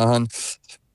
Ahem.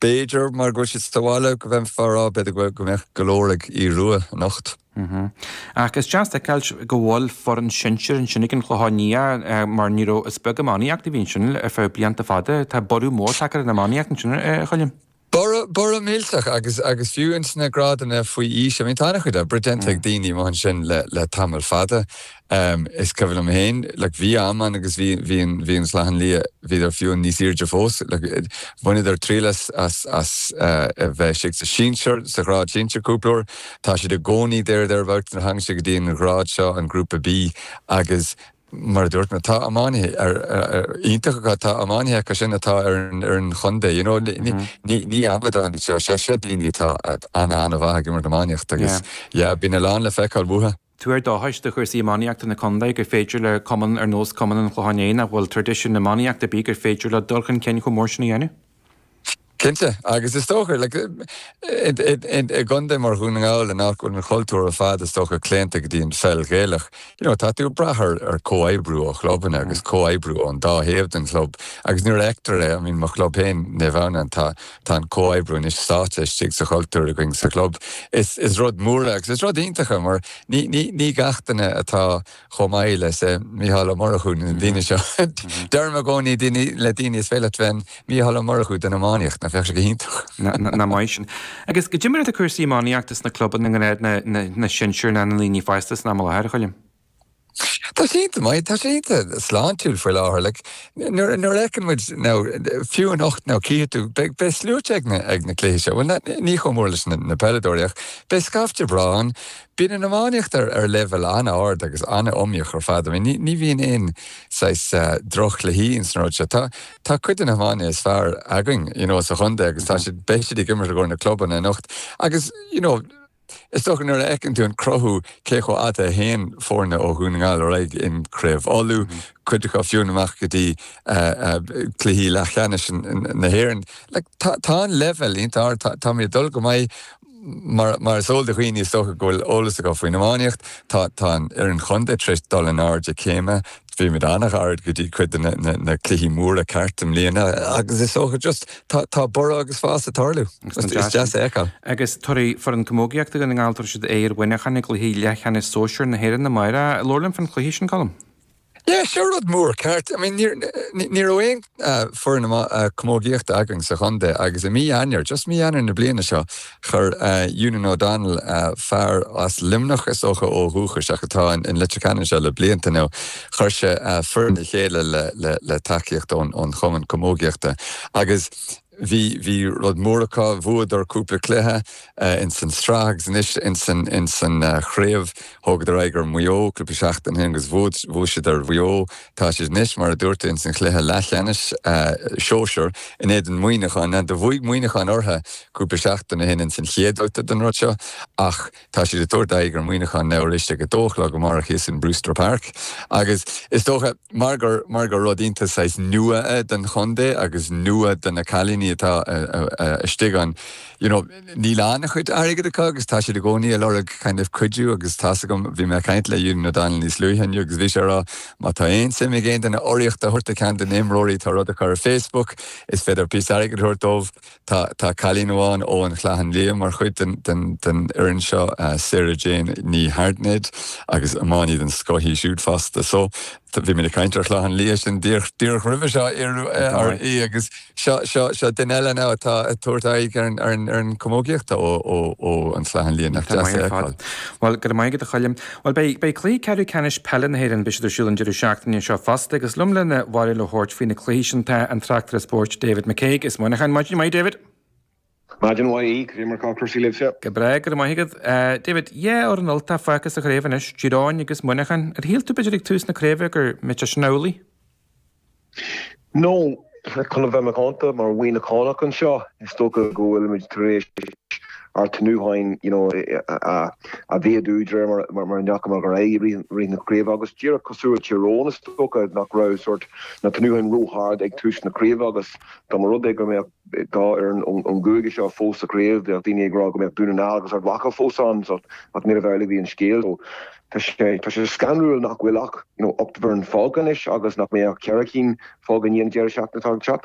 B'fhéidir mar go bhfuil siad sa bhaile go mbeifeá a' rá b'fhéidir go bhfuil go mbeadh go leor ag Aoidh Rua anocht. Ahem. Ach is deas a fheiceáil go bhfuil foireann sinsir ansin ag an Chlochán Liath mar ní raibh, is beag iománaíocht a bhí ansin ar feadh blianta fada. Tá borradh mór tagtha ar an iománaíocht ansin a Choilm. Borradh, borradh millteach agus, agus fiú ins na grádanna faoi aois, I mean tá an-chuid oibre déanta ag daoine amuigh ansin le, le tamall fada. Em, is cuimhin liom féin, like, bhí am ann agus bhí, bhí an, bhí an Clochán Liath, bhíodar fiú níos airde fós, like, eh, bhaineadar triail as, as, as, eh, a bheith istigh sa sinsear, sa ghrád sinsear cúpla uair. Tá siad i gcónaí there, thereabouts, nuair a thagann sé go dtí an ngrád seo, an grúpa B agus mar a dúirt mé, tá iománaithe ar, eh, eh, iontach acu, tá iománaithe acu sin atá ar an, ar an chontae, you know, ni, ni, Mhm. ni, ní amadán, seo, seo, seo daoine atá, eh, ana, ana mhaith ag imirt iománaíochta agus, Yeah. yeah, bíonn a lán le feiceáil uathu. Tuar dóchais do chúrsaí iománaíochta na contae gur féidir le cumann ar nós Cumann an Chlocháin Léith, nach bhfuil traidisiún iománaíochta ar bith, gur féidir leo dul chun cinn chomh mór sin a dhéanamh. Cinnte, agus is dócha, i gcontae mar Dhún na nGall, in áit go bhfuil an chultúr ar fad, is dócha, claonta go dtí an pheil Ghaelach, you know, tá tú ag brath ar comhoibriú ó chlubanna agus comhoibriú ón dá thaobh den chlub agus nuair a fheictear é, I mean, mo chlub féin, Naomh Adhamhnáin, tá. Tá an comhoibriú anois sáite istigh sa chultúr againn sa chlub. Is rud mór é agus is rud iontach é mar ní gach duine atá chomh maith le, say, Mícheál Ó Murchú nó na daoine seo. Deirim i gcónaí le daoine 'is féidir leat bheith an Mícheál Ó Murchú den iománaíocht', nach mbeadh sé go hiontach? Ná maith sin. Agus goidé mar atá cúrsaí iománaíochta sna clubanna i ngrád na sinsear ná na ndaoine fásta san am i láthair, a Choilm? Tá sé iontach maith, tá sé iontach sláintiúil faoi láthair. Like, nuair, nuair a fheiceann muid now, fiú anocht now, cífidh tú, beidh, beidh sluaite ag na, ag na cluichí seo. Bhuel na, ní chomh mór leis na, na peileadóirí ach beidh scaifte breá ann. Bíonn an iománaíocht ar, ar leibhéal an-ard agus an-iomaíoch ar fad. I mean ní, ní bhíonn aon saghas eh droch-chluichí ins na rudaí seo. Tá, tá cuid de na hiománaithe is fearr againn, you know, sa chontae agus tá siad, beidh siad ag imirt i gcomhair a gclubanna anocht agus, you know, Is dócha nuair a fheiceann tú an cruthú cé chomh fada a théann foirne ó Dhún na nGall ar aghaidh in Craobh Uladh, cuid acu fiú amach go dtí cluichí leathcheannais na hÉireann. Like tá an leibhéal iontach ard, táimid ag dul go maith mar mar is eol do dhaoine is dócha go bhfuil eolas acu faoin iománaíocht, tá tá an fhoireann chontae tar éis dul in airde céime, Bhí muid an-ghairid go dtí cuid de na cluichí móra ceart i mbliana agus is dócha just tá borradh agus fás ag tarlú. Is deas é a fheiceáil. Agus tabharfaidh foireann camógaíochta Dhún na nGall, tabharfaidh siad aghaidh ar Mhuineachán i gcluiche leathcheannais sóisir na hÉireann amárach. Labhair linn faoin chluiche sin, Colm. Yeah, seo rud mór, ceart? I mean, ní raibh aon. foireann camógaíochta againn sa chontae agus i mí Eanáir, just mí Eanáir na bliana seo, chuir Eunan O'Donnell, fear as Luimneach is dócha ó dhúchas ach atá in Leitir Ceanainn seo le blianta now, chuir sé foireann le chéile le tacaíocht ón chumann camógaíochta agus bhí, bhí rud mór acu, bhuadar cúpla cluiche ins an tsraith agus anois ins an, ins an chraobh. Thógadar aghaidh ar Mhaigh Eo cúpla seachtain ó shin agus bhuad, bhuaigh siad ar Mhaigh Eo. Tá siad anois, mar a dúirt tú, ins an chluiche leathcheannais sóisear in éadan Mhuineacháin. Now do bhuaigh Muineachán ortha cúpla seachtain ó shin ins an chéad bhabhta den rud seo ach tá siad ag tabhairt aghaidh ar Mhuineachán anois arís ag a dó a chlog amárach thíos in Brewster Park agus is dócha Mar gur mar gur rud iontach saghas nua é don chontae agus nua do na cailíní atá istigh ann, you know níl an-chuid airgid acu agus tá siad i gcónaí ag lorg kind of cuidiú agus tá's agam, bhí mé ag caint le Eunan O'Donnell níos luaithe inniu agus bhí sé ag rá má tá aon suim ag aon duine urraíocht a thabhairt do ceann de na himreoirí tá rud acu ar Facebook, is féidir píosa airgid a thabhairt dóibh. Tá cailín amháin ón Chlochán Liath mar chuid den fhoireann seo, Sarah Jane Ní hAirtnéid, agus iománaí den scoth í siúd fosta. So, bhí muid ag caint ar Chlochán Liath sin díreach roimhe seo agus seo duine eile now atá ag tabhairt aghaidh ar an chamógaíocht ón Chlochán Liath. Nach deas é a fheiceáil? Bhuel, go raibh maith agat a Choilm. Bhuel, beidh, beidh cluichí ceathrú ceannais peile na hÉireann, beidh siad ar siúl an deireadh seachtaine seo fosta agus liom lena bharúil a thabhairt faoi na cluichí sin tá an tráchtaire spóirt David McCague as Muineachán. Maidin mhaith, David. Maidin mhaith, Aodh. Cad é mar tá cúrsaí libhse? Go breá, go raibh maith agat. David, dhá fhoireann Ultach fágtha sa chraobh anois, Tír Eoghain agus Muineachán. Ar shíl tú b'fhéidir ag tús na craoibhe go mbeadh sé sin amhlaidh? Nó, chun a bheith macánta, mar Mhuineachánach anseo, is dócha go bhfuilimid tar éis ár tnútháin a mhéadú de réir mar a chuamar ar aghaidh i rith na craoibhe agus díreach cosúil le Tyrone, is dócha nach raibh na tnútháin ró-ard ag tús na craoibhe agus dá mba rud é go mbeadh. Beirt as an gcúige seo fós sa chraobh. Bheadh daoine ag rá go mbeadh Dún na nGall agus Ard Mhacha fós ann ach níorbh amhlaidh a bhí an scéal. Tá sé scanrúil nach bhfuil ach ocht bhfoireann fágtha anois agus nach mbeidh ach ceithre cinn fágtha i ndiaidh an deireadh seachtaine atá le teacht.